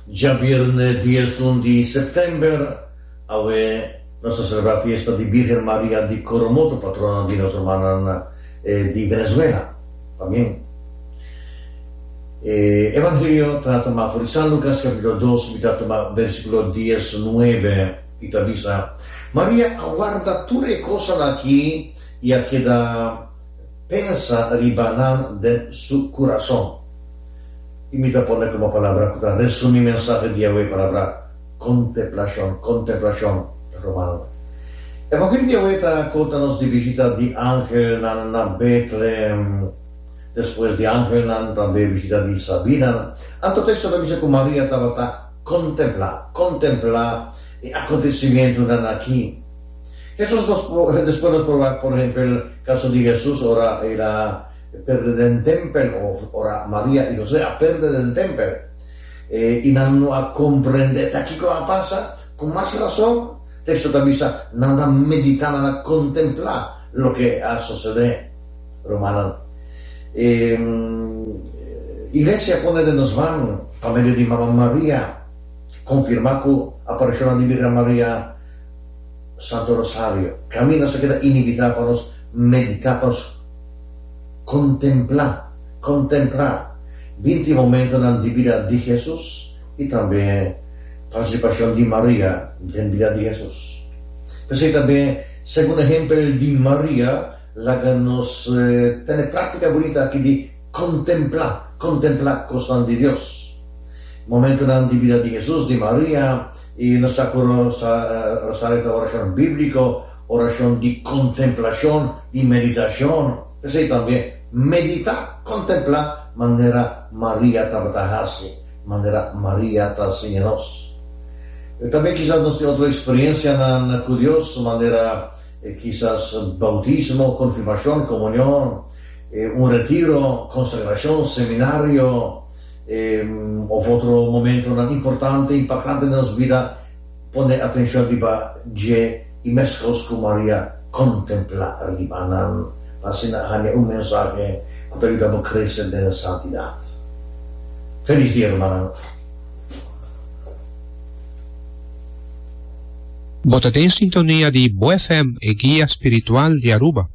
Dja bierne diesun di sèptèmber awe nos ta selebrá fiesta di Bírgen Maria di Coromoto, patrona di nos rumannan di Venezuela. Pa men, e Evangelio ta tuma afó di San Lucas capítulo dos, mi ta tuma versículo dies nuebe, i ta bisa, Maria a warda tur e cosnan aki i a keda. Pensa riba nan den su kurason. I mi ta pone komo palabra ku ta resumí mensahe diawe e palabra konteplashon, konteplashon, ta romano. Evangeliu diawe ta konta nos di bishita di angelnan na Betlehem. Despues di angelnan tambe bishita di sabinan. Anto teksto ta bisa ku Maria tabata kontemplá, kontemplá e akontesimentunan aki. Jesus nos probá, despues nos probá por ehempel caso di Jesus ora el a perde den tempel of ora Maria y José a perde den tempel y nan no a comprende ta kico a pasa, con mas razón texto ta bisa nan a meditá, nan a contemplá loke a socedé. Rumannan, e Iglesia pone den nos man pa medio di Mama Maria confirmá cu aparicionnan di Birgen Maria, Santo Rosario, kaminda so keda inibitá pa nos meditá, pa nos kontemplá, kontemprá, binti momentonan di bida di Hesus i tambe partisipashon di Maria den bida di Hesus. P'esei tambe segun ehempel di Maria laga nos tene práktika bunita aki di kontemplá, kontemplá kosnan di Dios. Momentonan di bida di Hesus, di Maria, I nos sa ku Rosario ta orashon bíbliko, orashon di kontemplashon, di meditashon. P'esei tambe meditá, kontemplá manera Maria tabata hasi, manera Maria ta siña nos. Tambe kisas nos tin otro eksperiensianan ku Dios, manera kisas boutismo, konfirmashon, komunion, un retiro, konsagrashon, seminario, E of otro momentonan importante i pakante den nos bida pone atenshon riba dje i meskos ku Maria kontemplá riba nan pa asina haña un mensahe ku ta yuda bo krese den santidat. Felis dia rumannan. Bo ta den sintonia di Bo FM, e guia spiritual di Aruba.